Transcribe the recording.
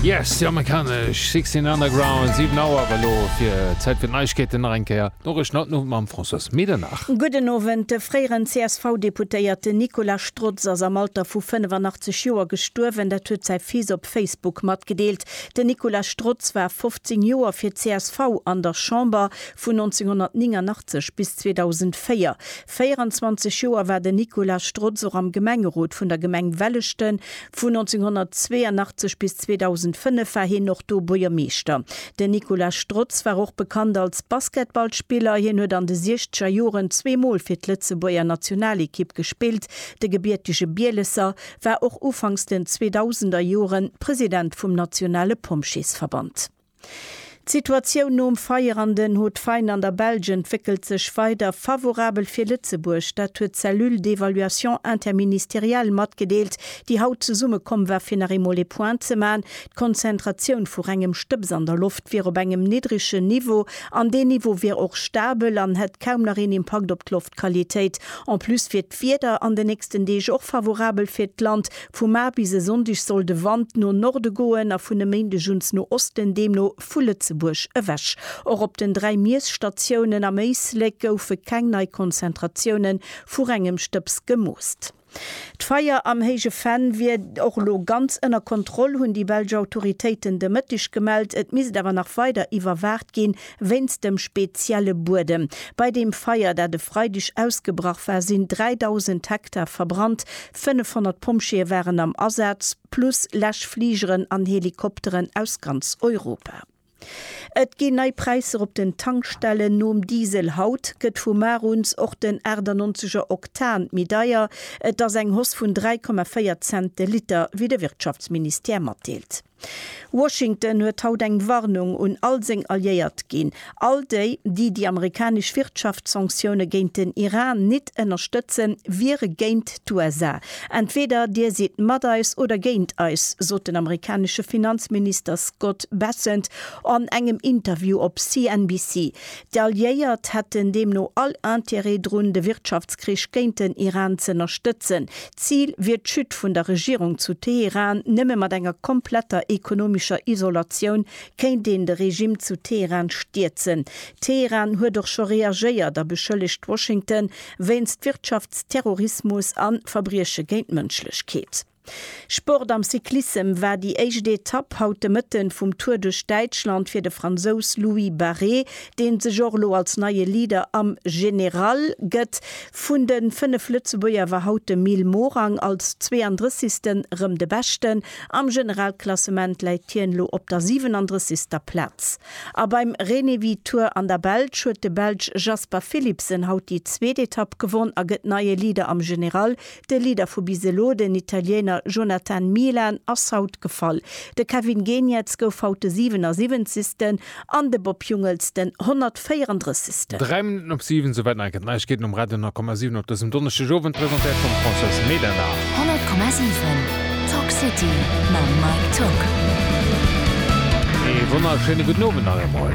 Yes, déi amerikanesch Sixteen Underground, 7 Auer elo fir Zäit fir d'Neiegkeeten nach eng Kéier. D'Noriichten haut den Owend mam Françoise Medernach. Gudden Owend. De fréieren CSV-Deputéierten Nicolas Strotz ass am Alter vu 85 Joer gestuerwen. Dat huet säi Fils op Facebook matgedeelt. Den Nicolas Strotz war 15 Joer fir d'CSV an der Chamber, vun 1989 bis 2004. 24 Joer war den Nicolas Strotz och am Gemengerot vun der Gemeng Welleschten. Vu 1982 bis 2005 war hien och do Buergermeeschter. Den Nicolas Strotz war och bekannt als Basketballspiller. Hien huet an de siechzeger Joren zwee Mol fir d'Lëtzebuerger Nationalekipp gespillt. De gebiertege Bielesser war och ufanks den 2000er Joren President vum nationale Pompjeesverband. D'Situatioun nom Feier an den Hautes-Faines an der Belsch entwéckelt sech weider favorabel fir Lëtzebuerg. Dat huet d'Cellule d'évaluation interministérielle matgedeelt, déi haut zesumme komm war fir nach eemol ee Point ze man. D'Konzentratioun vu rengem Stëbs an der Loft wier op engem niddregen Niveau an deen Niveau wier och stabel an hätt kaum nach een Impakt op d'Loftqualitéit. En plus wier D'Wieder an de nächsten Deeg och favorabel fir d'Land. Vu mar bis e Sonndeg soll de Wand no Norde goen a vun e Méindeg uns no Osten, deemno vu Lëtzebuerg ewech. Och op den dräi Miesstatiounen am Éislek goufe keng nei Konzentratioune vu rengem Stëbs gemoosst. D'Feier am Héije Venn wier och elo ganz ënner Kontroll, hunn déi belsch Autoritéiten de Mëtteg gemellt. Et misst awer nach weider iwwerwaacht ginn, Wéinst dem spezielle Buedem. Bei deem Feier, dat e Freideg ausgebrach war, sinn 3.000 Hektar verbrannt. 500 Pompjeeë waren am Asaz, plus Läschfligeren an Helikopteren aus ganz Europa. Et ginn nei Präisser op den Tankstellen. Nom Diesel haut gëtt vu mar uns och den 98 er Oktan méi deier. Et ass eng Hoss vun 3,4 Cent de Liter, wéi de Wirtschaftsministère matdeelt. Washington huet haut eng Warnung un all seng Alliéiert ginn, all déi, déi déi amerikanesch Wirtschaftssanktioune géint den Iran nit ënnerstëtzen, wiere géint d'USA. Entweder Dir sidd mat eis oder géint eis, sot den amerikanesche Finanzminister Scott Bessent an engem Interview op CNBC. D'Alliéiert hätten deemno all Interêt drun, de Wirtschaftskrich géint den Iran z'ënnerstëtzen. D'Zil wier d'Chute vun der Regierung zu Teheran. Nëmme mat enger kompletter ekonomischer Isolatioun kéint een de Regime zu Teheran stierzen. Teheran huet och scho reagéiert a beschëllegt Washington wéinst Wirtschaftsterrorismus a Verbrieche géint d'Mënschlechkeet. Sport Am Cyclissem war déi éischt Etapp haut de Mëtten vum Tour duerch Däitschland fir de Fransous Louis Barret, deen sech och elo als neie Leader am General gëtt. Vun de 5 Lëtzebuerger war haut de Mil Morang als 32. rëm de Beschten. Am Generalklassement läit hien elo op der 37. Plaz. A beim Renewi Tour an der Belsch huet de Belsch Jasper Philipsen haut déi zweet Etapp gewonn a gëtt neie Leader am General De Leader vu bis elo, den Italiener Jonathan Milan, ass haut gefall. De Kevin Geniets gouf haut de 77. an de Bob Jungels den 134. Dräi Minutten op 7, souwäit nei gëtt Neiegkeeten um Radio 10,7 op dësem Donneschdegowend, presentéiert vum Françoise Medernach. 100,7 Talk City mam Mike Tocq. Ee wonnerschéine gudden Owend nach eemol.